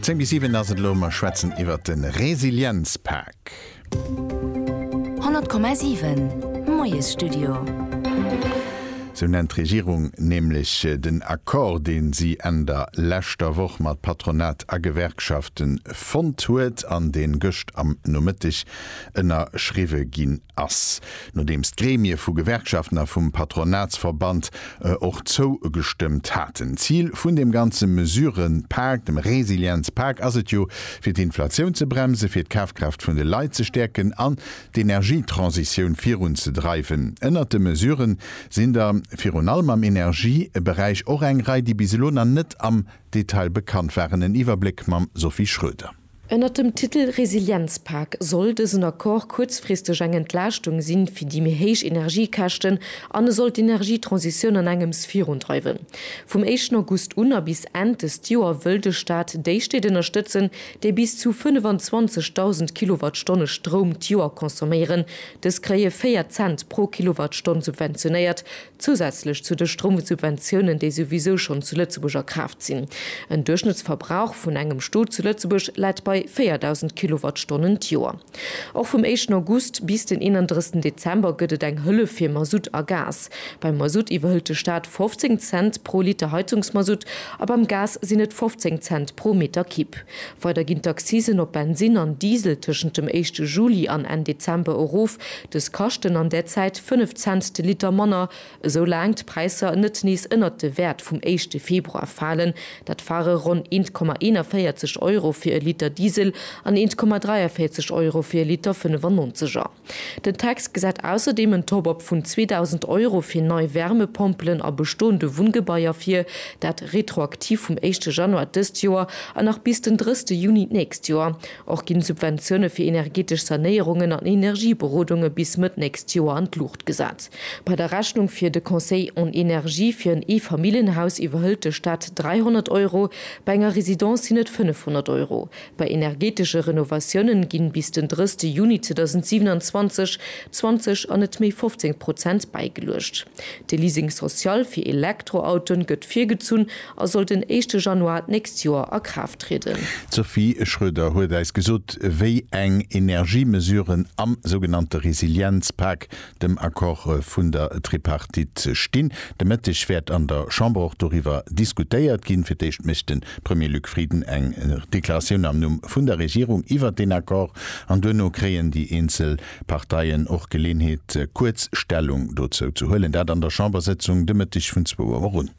Zéng bis siwen ass et elo, mer schwätzen iwwert de Resilienzpak. 100,7, Moiesstudio. Sou nennt d'Regierung nämlech den Accord, deen si Enn der leschter Woch mat Patronat a Gewerkschaften fonnt huet an deen gëscht am Nomëtteg ënnerschriwwe ginn ass, nodeems d'Gremie vu Gewerkschaften a vum Patronatsverband och zougestëmmt haten. Zil vun deem ganze Mesurepak, dem Resilienzpak, ass et jo, fir d'Inflatioun ze bremsen, fir d'Kafkraaft vun de Leit ze stäerken an d'Energietransitioun virunzedreiwen. Ënnert de Mesurë sinn der virun allem am Energieberäich och eng Rei, déi bis elo nach net am Detail bekannt waren. En Iwwerbléck mam Sophie Schröder. Ënnert dem Titel Resilienzpak soll dësen Accord kuerzfristeg eng Entlaaschtung si fir déi méi héich Energiekäschten an e soll d'Energietransitioun an engems virundreiwen. Vum éischten August un a bis Enn dëst Joer wëll de Staat déi Stéit ënnerstëtzen, déi bis zu 25.000 Kilowattstonne Stroum d'Joer consomméieren. Dës kréie 4 Cent pro Kilowattstonn subventionéiert, zousätzlech zu de Stroumsubventiounen, déi souwisou schonn zu Lëtzebuerg a Kraaft sinn. En Duerchschnëttsverbrauch vun engem Stot zu Lëtzebuerg läit bei 4.000 Kilowattstonnen d'Joer. Och vum éischten August bis den 31 Dezember gëtt et eng Hëllef fir Masutt a Gas. Beim Masutt iwwerhëlt de Staat 15 Cent pro Liter Heizungsmasutt a beim Gas sinn et 15 Cent pro Meter Kibb. Weider ginn d'Accisen op Bensin an Diesel tëschent dem éischte Juli an Enn Dezember erof. Dës kaschten an där Zäit 5 Cent de Liter manner, esou laang d'Präisser net nees ënnert de Wäert vum éischte Februar falen. Dat ware ronn 1,41 Euro fir e Liter Diesel an 1,43 Euro fir e Liter 95er. Den Text gesäit ausserdeem en Top-Up vun 2.000 Euro fir nei Wärmepompelen a bestoende Wunngebaier vir, dat retroaktiv vum éischte Januar dëst Joer an nach bis den drësste Juni d'nächst Joer. Och ginn d'Subventioune fir energetesch Sanéierungen an Energieberodunge bis Mëtt nächst Joer an d'Luucht gesat. Bei der Rechnung fir de Conseil en énergie fir en Eefamilljenhaus iwwerhëlt de Staat 300 Euro, bei enger Residence sinn et 500 Euro. Bei energeetesche Renovatiounen ginn bis den 30 Juni 2027 20 an net méi 15 Prozent bäigeluecht. De Leasing social fir Elektroautoen gëtt virgezunn a soll den éischte Januar d'nächst Joer a Kraaft trieden. D'Sophie Schroeder huet eis gesot, wéi eng Energiemesuren am sougenannte Resilienzpak dem Accord vun der Tripartite stinn. De Mëtteg wäert an der Chamber och doriwwer diskutéiert ginn. Fir d'éischt mécht de Premier Luc Frieden eng Deklaratioun am Numm vun der Regierung iwwert deen Accord an duerno kréien déi eenzel Parteien och Geleeënheet, kuerz Stellung dozou ze huelen. Dat an der Chambersëtzung de Mëtteg vun zwou Auer un.